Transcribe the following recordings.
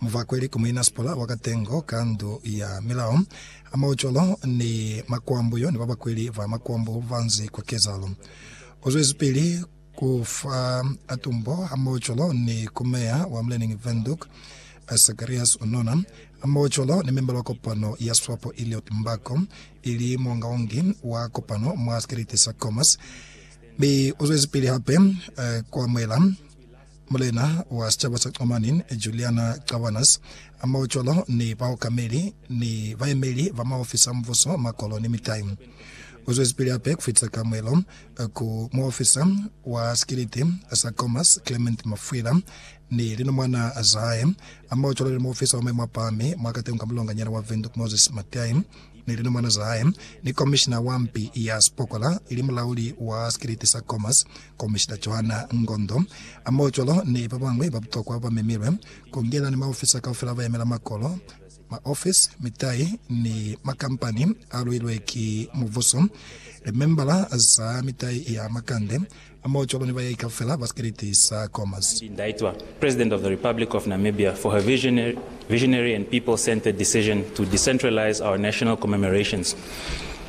Muvakweli ku muinasipala wa Katengo ka Ndu ya Milao, Maocolo ni Makwambu yo ni babakweli ba makwambu banzi kwa kezalo. Uzwezipili ku fa tumbo ha maocolo ni ku meya wa Mlening Windhoek, Sacarias Unona, maocolo ni membala wa kopano ya Swapo Elliot Mbako, ili muongaongi wa kopano mwa sikeriti sa Khomas, mi uzwezipili hape ku amuhela Mulena wa sicaba sa Xamanin, Juliana Cabanas, amao cwalo ni baokameli ni bayemeli ba maofisi a mubuso, makolo ni mitai. Uzwezipili hape kufitisa kamuelo ku muofisa wa sikiliti sa Comas, Clement Mafwila, ni linomwana zahae, amao cwalo ni muofisa wa maimo apahami mwa katengo ka mulonganyana wa Windhoek, Moses Matiae, ni linomwana zahae, ni komishina wa mpi ya sipokola ili mulauli wa sikiliti sa Comas, Komishina Johanna Ngondo Amojolo ni babañwi ba butokwa bamemilwe, kungena ni maofisa kaufela abayemela makolo, maofisi, mitai ni makampani aluilwe ki mubuso, limembala za mitai ya makande, amojolo ni bayahi kaufela ba sikiliti sa Khomas. Tandi Ndaitwah, President of the Republic of Namibia, for her visionary and people-centered decision to decentralize our national commemorations.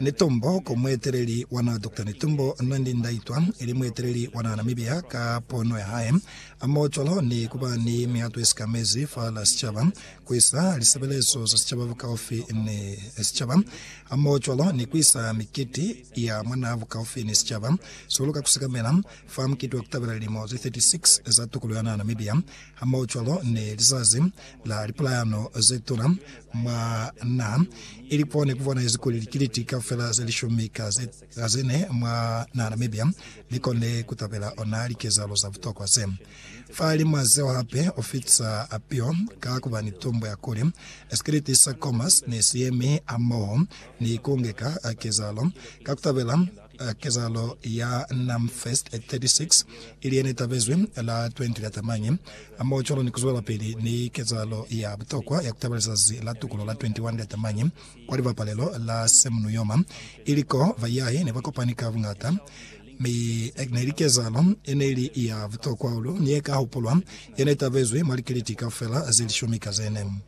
Netumbo ku mueteleli wa naha Doctor Netumbo Nandi Ndaitwa ili mueteleli wa naha Namibia ka pono ya hae. A mo cwalo ni ku ba ni mihato ye sika mezi fa la sicaba, ku isa lisebelezo za sicaba bukaufi ni sicaba, ha mo cwalo ni ku isa mikiti ya mwa naha bukaufi ni sicaba. Sihulu ka ku sekamela fa mukiti wa ku tabela lilimo ze 36 za tukuluho ya naha Namibia, Hamaocwalo ni lizazi la lipulayano zetuna mwa naha, ili ko nekubonaezi kuli likiliti kaufela zelishumi ka ze, ka zene mwa naha Namibia likone kutabela ona likezahalo za butokwa ze. Fahalimwa zeo hape, ufitisa apio ka kuba ni tumbo ya kuli sikiliti sa Comas ne siyemi hamoho ni kungeka kezahalo ka kutabela Eh, kezahalo ya Namfest 36 ili yene tabezwi la 20 la Tamañi, hamoho cwalo ni kuzwelapili ni kezahalo ya butokwa ya kutabela lizazi la tukulo la 21 la Tamañi kwa libapalelo la Semnuyoma, ili ko bayahi ne bakopani ka buñata. Mi neli kezahalo yeneli ya butokwa hahulu ni yeka hupulwa yene tabezwi mwa likiliti kaufela zelishumi ka zene.